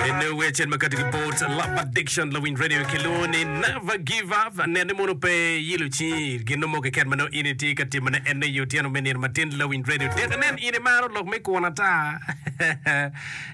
In the way chin makati ki boards love addiction lawiny radio ki loo ni never give up nene mono pe yilo chi gino mo keken mano in itye ka timo ne enne yo tyeno me nino matin lawiny radio tek nen in imaro lok me kwon ata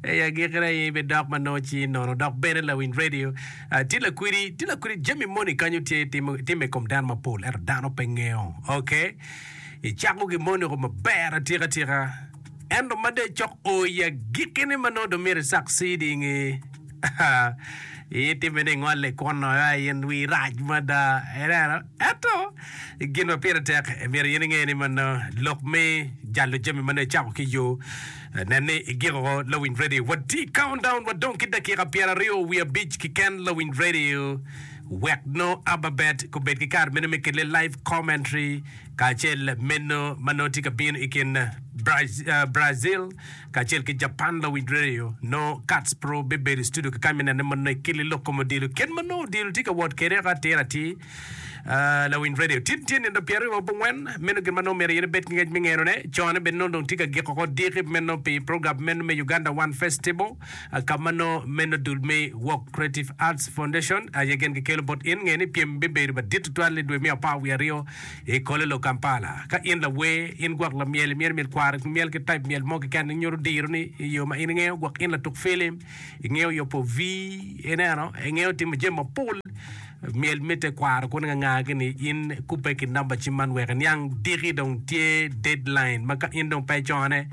eyi agikine in be dok mano chi nono dok bene lawiny radio ah, tye lakwiri tye lakwiri jami moni kanyo tye timo timo i kom dano mapol ento dano pe ngeyo okay icako gi moni ko maber atika tika Ento ma dong ecok o i agikki ni ma nongo dong myero icak CD nge, itimme ni ingole kunno, ai in wii rac mada. Ineno? Ento gin ma pire tek myero in inge ni ma nongo lok me jalo jami ma nongo icako ki yo, nen ni igiko lawiny radio. Wati countdown wadong ki dakika pyer aryo wiye abic kiken lawiny radio wek nongo Ababet gubed ki kare meno me kelle live commentary. kacel meno ma nongo tye ka bino i kin Brazil kacel ki Japan lawinj redio, nongo Katz Pro bibedo i studio kekany me nene mono i kili lok kom odilo. Kit ma nongo odilo tye ka wot kwede eka atir atir lawinj redio. Tin tye nino pyeraryo wa bongwen, meno gin ma nongo myero yene bed ki ngec me ngenone. Cone bene nongo dong tye ka giko ko diki meno pi program meno me Uganda One Festival, ka ma nongo meno dul me Walk Creative Arts Foundation aye gin gikelo bot in. Nge ni pyem bibedo madit tutwal i dwe me apar wiye aryo I Kololo, Kampala, ka in lawer, in gwok lamyel, imyero imyel kwaro ki myel ki taip myel mo keken. Inyuto dironi i yo ma in ingeyo gwok. In latuk filim, ingeyo yubo vi, ineno, ingeyo timo jami mapol. Myel mitte kwaro kuni nganga gini in kubbe ki number cim man wek iniang diki dong tye deadline ma ka in dong pe icone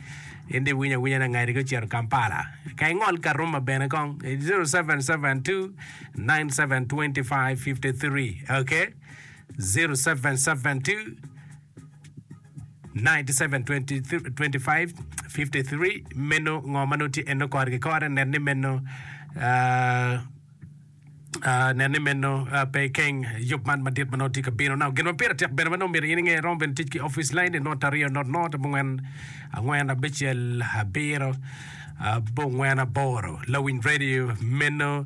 in dong iwinyo awinya ni angadigi ocito Kampala. Ka ingol Karuma bene kong 0772 9725 53 okay. 0772972553 meno ngo ma nongo tye eno kore ki kore nen ni meno ah, ah, nen ni meno ah, pe ikeng yub man madit ma nongo tye ka bino nao gin ma pire tek bene ma nongo myero in inge irom bene tic ki opic lain ni not aryo not not abongwen angwen abicel abiro abongwen aboro lawiny radio meno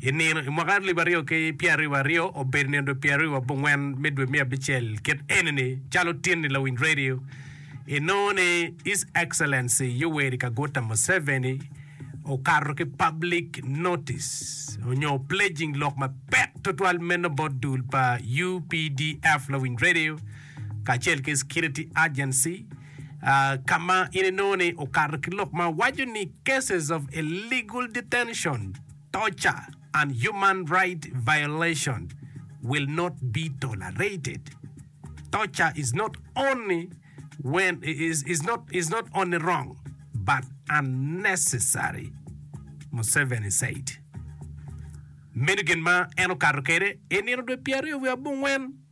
I nino, i mwaka alip aryo ki pyeraryo wa aryo, obedo nino dwe pyeraryo wa bongwen me dwe me abicel kit enini, calo tin i lawiny radio, inongo ni His Excellency Yoweri Kaguta Museveni okato ki public notice onyo pledging lok mapek twatwal meno bot dul pa UPDF lawiny radio kacel ki security agency ka ma in inongo ni okato ki lok ma waco ni Cases of Illegal Detention, Torture, and Human Rights Violations Will Not Be Tolerated. Torture is not only when is, is not is not only wrong but unnecessary, Museveni said. Meno gin ma en okato kwede i nino dwe pyeraryo wiye abongwen.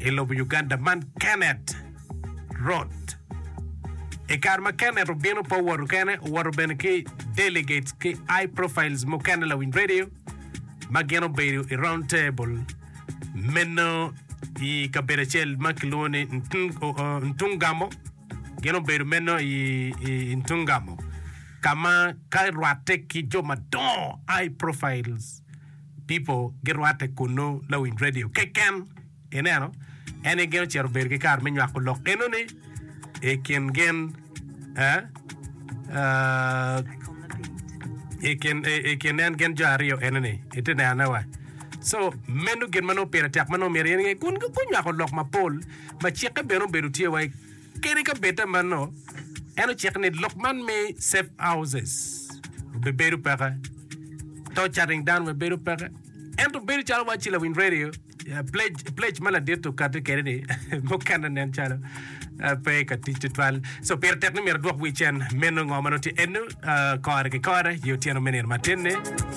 i lobo Uganda man Kenneth Roth. I kare ma Kenneth obino pe owoto kene, owoto bene ki delegates ki high profiles mukene lawiny radio ma gin obedo i round table meno i kabedo acel ma kilwongo ni Ntung- o- o- Ntungamo. Gin obedo meno i, i, i Ntungamo ka ma ka rwatte ki jo madongo high profiles pipo girwatte kunnu lawiny radio keken. Ineno, en aye gin ocito bedo ki kare me nywako lok enoni i kin gin i kin en gin jo aryo enoni. Iti nenone wa? So, meno gin ma nongo pire tek ma nongo myero in inge kun gunywako lok mapol ma cikke bene obedo tye wa Kadi ka bed ta mano, en ociko ni lok man me safe houses obibedo peke, to cutting down bene bedo peke. Ento bedo calo wacci lawiny radio eh, pledge, pledge ma ladit okati kede ni mukene nen calo eh, pe ka tic tutwal. So pire tek ni myero adwok wi cen meno ngo ma nongo tye eno eh, kore ki kore i otyeno me nino mateni.